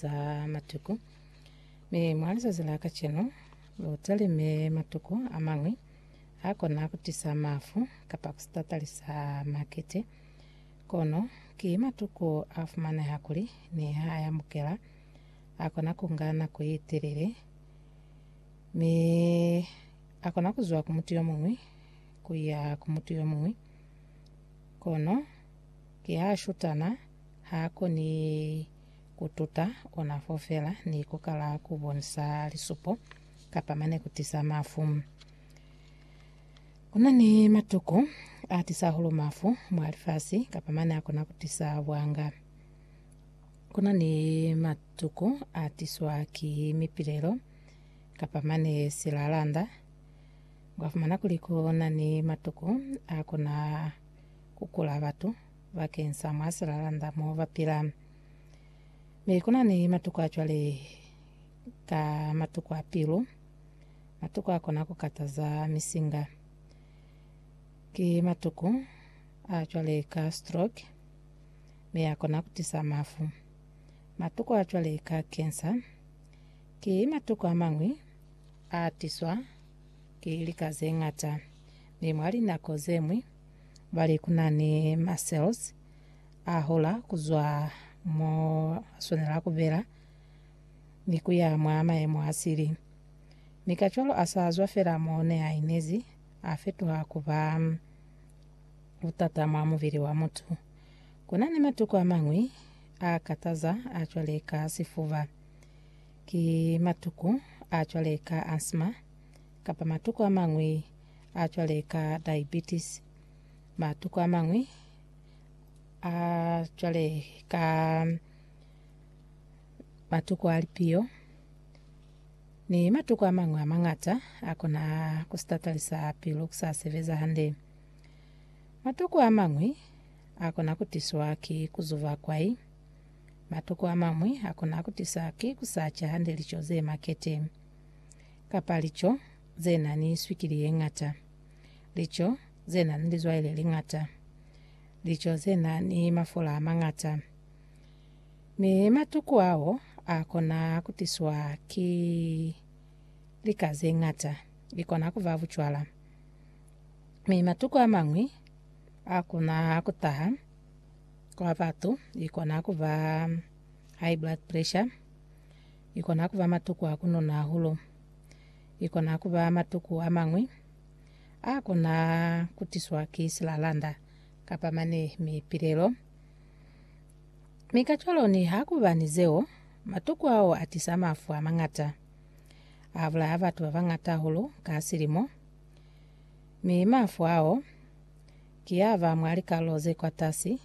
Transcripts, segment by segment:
za matuku. Mi mwa lizazi la kacenu, lu talime matuku a mañwi a kona ku tisa mafu kapa ku sitatalisa makete. Kono ki matuku a fumaneha kuli ni ha a yamukela, a kona ku nga nako ye telele, mi a kona ku zwa ku mutu yo muñwi ku ya ku mutu yo muñwi. Kono ki ha a shutana, ha a koni Ku tuta ona fo fela ni ku kala ku bonisa lisupo kapa mane ku tisa mafu. Ku na ni matuku a tisa hahulu mafu mwa lifasi kapa mane a kona ku tisa bwanga. Ku na ni matuku a tiswa ki mipilelo kapa mane silalanda. Wa fumana kuli ku na ni matuku a kona ku kula batu bakeng sa mwa silalanda mo ba pila. Mi ku na ni matuku a cwale ka matuku a pilu, matuku a kona ku kataza misinga. Ki matuku a cwale ka stroke, mi a kona ku tisa mafu. Matuku a cwale ka kensa, ki matuku a mañwi a tiswa ki lika ze ñata, mi mwa linako ze ñwi bali kunani ma cells a hola kuzwa mo aswanela kubela ni kuya mwa mayemo a sili. Mi kacwalo asa zwa fela mo ne a inezi, a fetuha kuba butata mwa mubili wa mutu. Kunani matuku amañwi a kataza a cwale ka sifuba, ki matuku a cwale ka asthma, kapa matuku amañwi a cwale ka diabetes. Matuku a mañwi a cwale ka matuku a lipiyo ni matuku a mañwi a mangata a kona ku sitatalisa pilu ku sa sebeza hande. Matuku a mañwi a kona ku tiswa ki ku zuva kwai. Matuku a mañwi a kona ku tisa ki ku sa ca hande lico ze makete kapa lico ze na ni swikili ye ñata, lico ze na ni lizwai le liñata, lico ze na ni mafola a mañata. Mi matuku ao a kona ku tiswa ki lika ze ñata, li kona ku ba bucwala. Mi matuku a mañwi a kona ku taha kwa batu, li kona ku ba high blood pressure, li kona ku ba matuku a ku nona hahulu. i kona ku ba matuku a mañwi a kona ku tiswa ki silalanda kapa mane mipilelo. Mi kacwalo niha ku ba ni zeo, matuku ao a tisa mafu a mañata. A bulaya batu ba bañata hahulu ka silimo, mi mafu ao ki a ba mwa likarolo ze kwatasi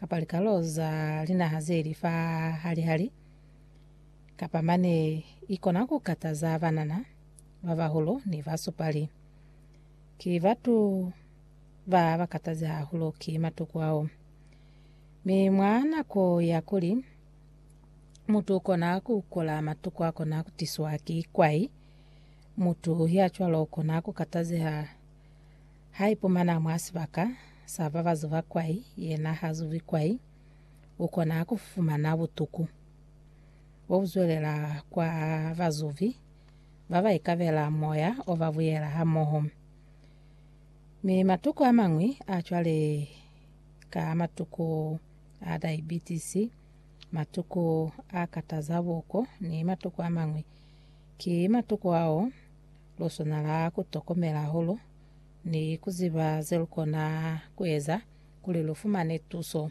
kapa likarolo za linaha ze li fa hali-hali Kapa mane ikona ku kataza banana, babahulu ni basupali. Ki batu ba ba katazi hahulu ki matuku ao. Mi mwa nako ya kuli mutu ukona ku kola matuku akona kutiswa ki kwai, mutu ya cwalo ukona ku katazeha haipumana mwa sibaka sa babazuba kwai, yena hazubi kwai, ukona kufumana butuku. Bo kuzwelela kwa bazubi ba ba ikabela moya o ba buyela hamoho. Mi matuku a mañwi a cwale ka matuku a diabetes, matuku a kataza buko ni matuku a mañwi, ki matuku ao lu swanela ku tokomela hahulu ni ku ziba ze lu kona ku eza kuli lu fumane tuso.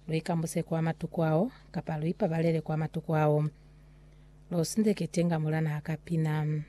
Luikambuse kwa matuku ao, kapa luipabalele kwa matuku ao. Losindeke tenga mulana haka pina.